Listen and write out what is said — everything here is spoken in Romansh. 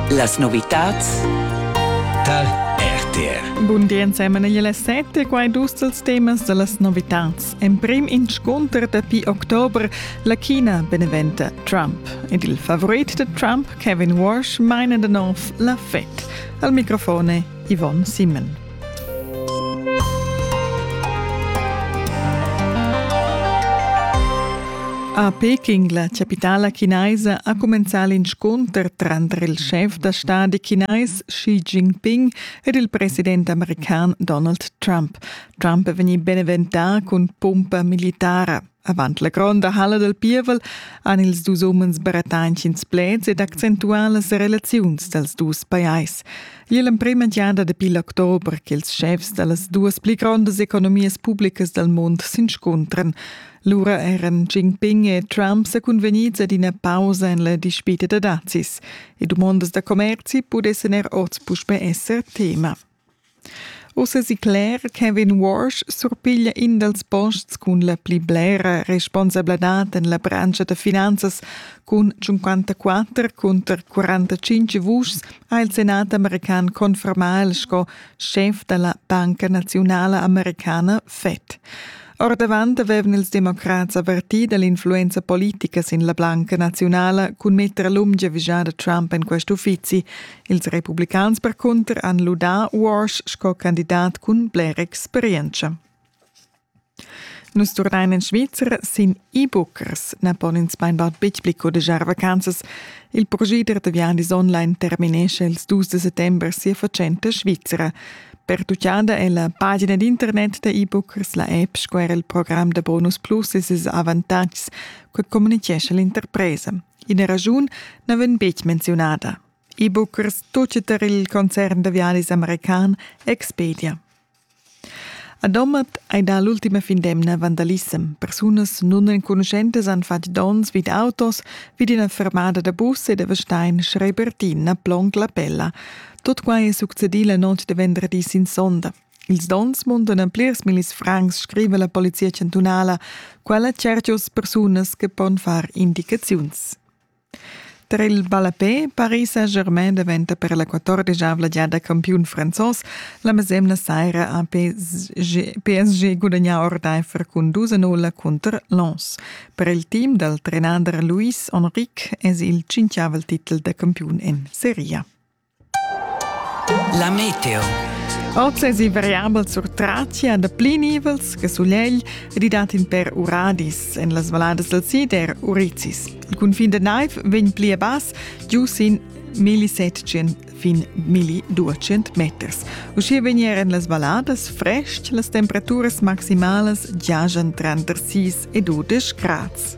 Las novitads tar RTR. Bun di ensemen igl sette, quai dus dels temas da las novitads. En prim inscunter dapi october la China beneventa Trump. Ed il favorit de Trump, Kevin Walsh, meine den auf la Fed. Al microfone Yvonne Simon. A Peking, la chapitala chinaisa, ha cumenzà l'inscunter tranter il schef da stadi chinais Xi Jinping ed il president american Donald Trump. Trump è vegnì beneventà cun pumpa militara. Avant la gronda halla dal pievel han ils dus umens bretanschins pleds ed accentuà las relaziuns dals dus pajais. Igl è l'emprima giada dapi l'october ch'ils schefs da las duas pli grondas economias publicas dal mund s'inscuntran. Lura eran Jinping e Trump sa cunvegnids ad ina pausa en la dispita da dazis. E dumondas da commerzi pudessan er oz puspè esser tema. Uss èsi cler che Kevin Walsh surpiglia in dals posts cun la pli blera responsabladad en la branscha da finanzas. Cun 54 cunter 45 vuschs ha il senat american confermà el sco schef da la Banca naziunala americana Fed. Ordavant avevan ils democrats avvertì da l'influenza politica sin la blanca naziunala cun metter lungia vigiada Trump en quest uffizi. Ils republicans percunter han ludà Walsh sco candidat cun blera experientscha. Nus turnain in Svizzer sin e-bookers na pon ins bainbad betg pli codegiar vacanzas. Il progider da viandis online terminescha ils dus de settembre sia fatschenta svizra. Pertuchada è la pagina d'internet da e-book sla app sco er il program da Bonus Plus e ses avantatgs che communicescha l'interpresa. Ina ragiun na vegn betg menzionada. E-bookers tutg tar il concern da viadis american Expedia. A Domat hai dà l'ultima fin d'emna vandalissem. Persunas nunenconuschentas han fatg dons vid autos, vid ina fermada da bus e da Stein schreibertin a Plonc la Pella. Tot quai è succedì la notg de venderdi sin sonda. Ils dons mundan a plirs millis francs, scrive la polizia chantunala. Quella certius persunas che pon far indicaziuns. Tra il ballapé, Paris Saint-Germain diventa per la quattordigiavla giada campiun franzos. La mesemna saira ha PSG gudagnà ordaifer cun 2-0 cunter Lens. Per il team dal trenader Luis Enrique es il cinquiavel titel da campiun en Serie A. La meteo. Oz es i variabel sur Tracia da pli nivels che sulegl ridat in per uradis en las valadas del Sider Urizis. Il cunfin da naiv vegn pli a bass giu sin 1700 fin 1200 meters. Uschia vegner en las valadas frest las temperaturas maximalas giajan tranter 6 e 12 grads.